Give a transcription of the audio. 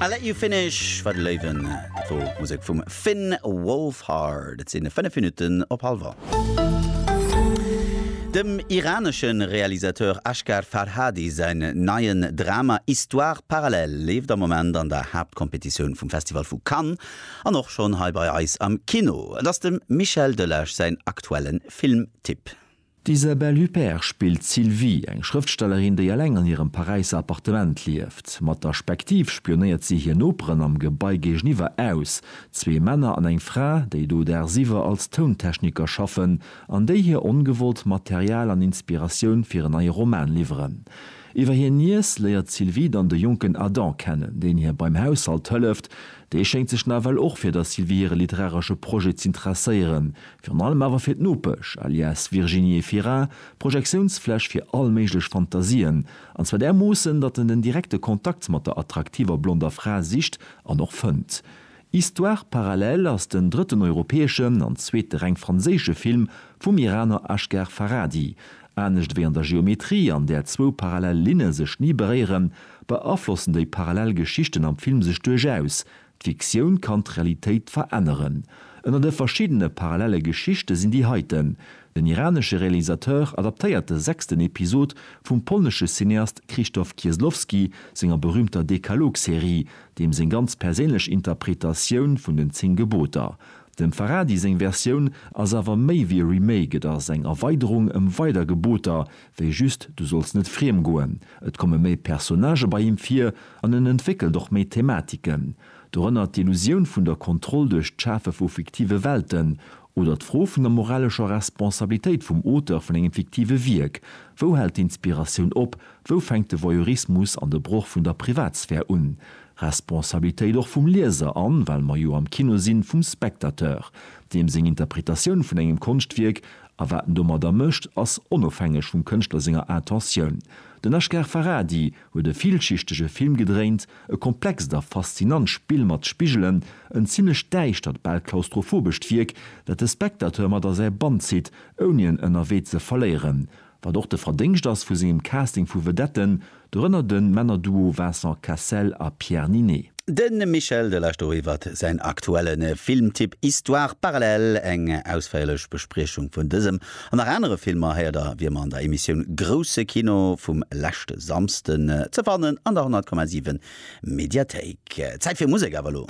I Let You Finish war de Léiwen. Dat wor Musek vum Finn Wolfhard. Et sinn 5 Minutten op hallwer. Dem iranesche Realisateur Asghar Farhadi säin neien Drama Histoires parallèles leeft am Moment an der Haaptkompetitioun vum Festival vu Cannes an och schonn hei bei eis am Kino. Et ass dem Michel Delage säin aktuelle Filmtipp. D'Isabelle Huppert spillt d'Sylvie, eng Schrëftstellerin, déi eleng an hirem Paräisser Appartement lieft. Mat der Spektiv spionéiert si hir Noperen am Gebai géigeniwwer aus, zwee Männer an eng Fra, déi do dagsiwwer als Tountechniker schaffen an déi hir ongewollt Material an Inspiratioun fir en neie Roman liwweren. Iwwer hir Niess léiert d'Sylvie dann de jonken Adam kennen, deen hir beim Haushalt hëlleft, Déi schéngt sech nawell och fir der Sylvie hire literaresche Projet z'interesséieren, virun allem awer fir d'Nopesch, alias Virginie Efira, Projektiounsfläch fir all méiglech Fantasien, an zwar därmoossen, datt en den direkte Kontakt mat der attraktiver blonder Fra sicht an och fënnt. Histoires parallèles ass den drëtten europäeschen an zweete reng franséische Film vum Iraner Asghar Farhadi, Anescht wéi an der Geometrie, an där zwou parallel Linne sech ni beréieren, beaflossen déi parallel Geschichten am Film sech duerchaus. D'Fiktioun kann d'Realitéit veränneren. Ënner de verschiddene parallelle Geschichte sinn déi heiten. Den iranesche Realisateur adaptéiert de sechsten Episod vum polnesche Cineast Krzysztof Kieslowski senger berüümter Dekalog-Serie, deem seng ganz perséinlech Interpretatioun vun den Zéng Geboter. Dem Farhadi seng Versioun ass awer méi wéi e Remake, et ass eng Erweiderung ëm weider Geboter wéi just du solls net friem goen. Et komme méi Personnagë bei him vir an en entwéckelt och méi Thematiken. Dorënner d'Illusioun vun der Kontroll duerch d'Schafe vu fiktive Welten oder d'Fro vun der moralescher Responsabilitéit vum Auteur vun engem fiktive Wierk. Wou hält d'Inspiratioun op? Wou fänkt de Voyeurismus an de Broch vun der Privatsphär un? Responsabilitéit och vum Lieser an, well mer jo am Kino sinn, vum Spectateur, deem seng Interpretatioun vun engem Konschtwierk a wat en domadder mécht, ass onofhängeg vum Kënschtler senger Intentioun. Den Asghar Farhadi huet e villschichtege Film gedréint, e komplext a faszinant Spill mat Spigelen, en zimlech däischtert, bal klaustrophobescht Wierk, dat de Spectateur mat a säi Bann zitt, ouni en ënnerwee ze verléieren. Wat och de Verdéngscht ass vu sengem Casting vu Vedetten, dorënner de Männerduo Vincent Cassel a Pierre Ninet. De Michel Delage do iwwert säin aktuelle Filmtipp Histoires parallèles. Eng ausféierlech Bespriechung vun dësem an nach anere Filmer héiert a wier mer an der Emissioun Grousse Kino vum leschte Samsden ze fannen an der 100,7 Mediathéik. Zäit fir Musek awer elo.